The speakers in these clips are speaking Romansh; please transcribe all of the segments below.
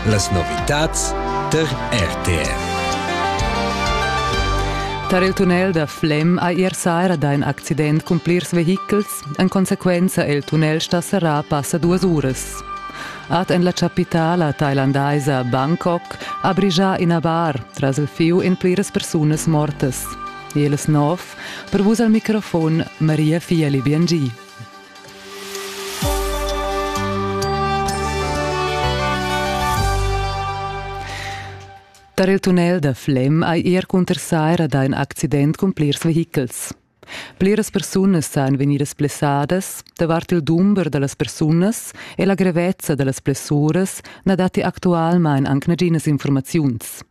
Las novitads tar RTR. Tar il tunnel da Flem ha ier saira dà in accident cun plirs vehichels. En consequenza è il tunnel stà serrà passa duas uras. Ad en la chapitala thailandaisa Bangkok ha brigià ina bar tras il fiu in pliras persunas mortas. Il snov, per vus al microfon Maria Fieli Biangi. Tar il tunnel da Flem hai er cunter saira dà in accident cun plirs vehichels. Pliras persunas san vegnidas blessadas, davart il dumber da las persunas e la grevezza da las blessuras na datti actualmain anc naginas informaziuns.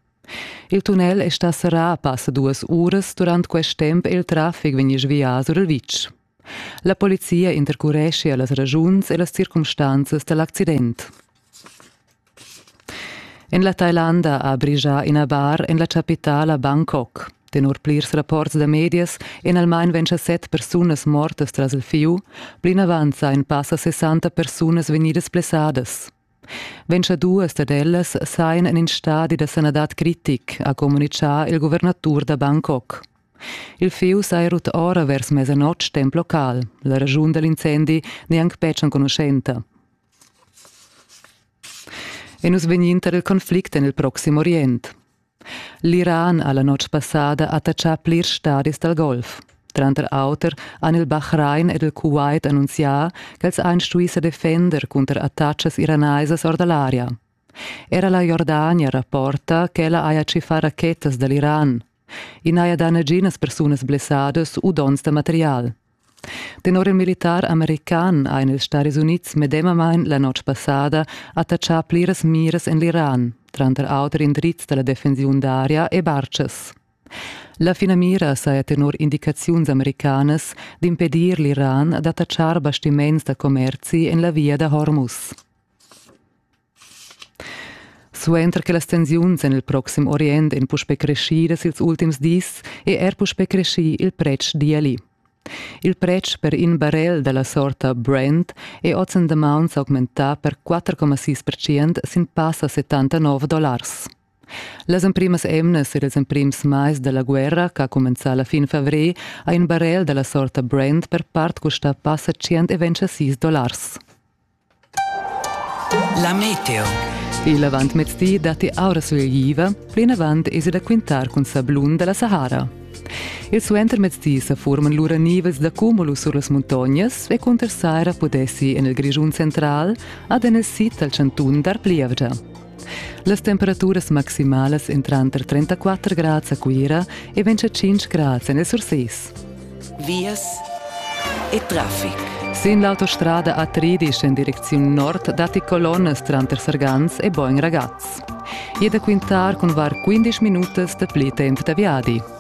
Il tunnel è stà serrà passa duas uras durant quest temp e il traffic vegni svià sur il vitg. La polizia intercurescha las raschuns e las circumstanzas da l'accident. En la Thailanda ha brigià ina bar en la chapitala Bangkok. Tenor plirs rapports da medias èn almain 27 persunas mortas tras il fieu. Plinavant sajan passa 60 persunas vegnidas blessadas. Ventgaduas dad ellas sajan en in stadi da sanadad critic, ha communitgà il guvernatur da Bangkok. Il fieu saja rut ora vers mesanotg temp local. La raschun da l'incendi n'è anc betg enconuschenta. E nus vegnin tar il conflict en il Proxim Orient. L'Iran ha la notg passada attachà plirs stadis dal golf. Tranter auter han il Bahrain ed il Kuwait annunzià ch'els han stuì sa defender cunter attacas iranaisas or da l'aria. Era la Jordania rapporta ch'ella haja tschiffà rachetas da l'Iran. I n'haja dà naginas persunas blessadas u donns da material. Tenor il militar american ein ils Staris Unids medemamein la notg passada attachà pliras miras en l'Iran, tranter auter indrizs dalla defensiun d'aria e bartschas. La finamira saja tenor indicaziuns americanas d'impedir l'Iran d'attachar bastiments da commerzi en la via da Hormuz. Suenter che las tensiuns en il proxim Orient èn puspè creschidas ils ultims dis, è er puspè creschì il pretsch d'ieli. Il pretsch per in barel da la sorta Brent è oz en damaun s'augmentà per 4,6% sin passa 79 dollars. Las emprimas emnas e ils emprims mais da la guerra, che ha cumenzà la fin favrer, ha in barel da la sorta Brent per part custà passa 126 dollars. La meteo. Il avantmezdi datti aura sulegliva, plinavant esi da quintar cun sablun da la Sahara. Il suentermezdi sa furman lura nivels da cumulus sur las muntognas e cunter saira pudessi en il Grischun central ad in sid dal chantun dar plievgia. Las temperaturas maximalas en tranter 34 grads a Cuira e 25 grads en Surses. Vias e traffic. Sin l'autostrada A13 en direcziun nord datti colonnas tranter Sargans e Boin-Ragaz. E da quintar cun var 15 minutas da pli temp da viadi.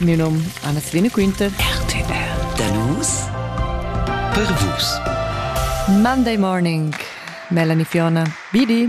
Miu num Anna Selina Quinter. RTR. Da nus per vus. Monday morning. Melanie Fiona. Bidi.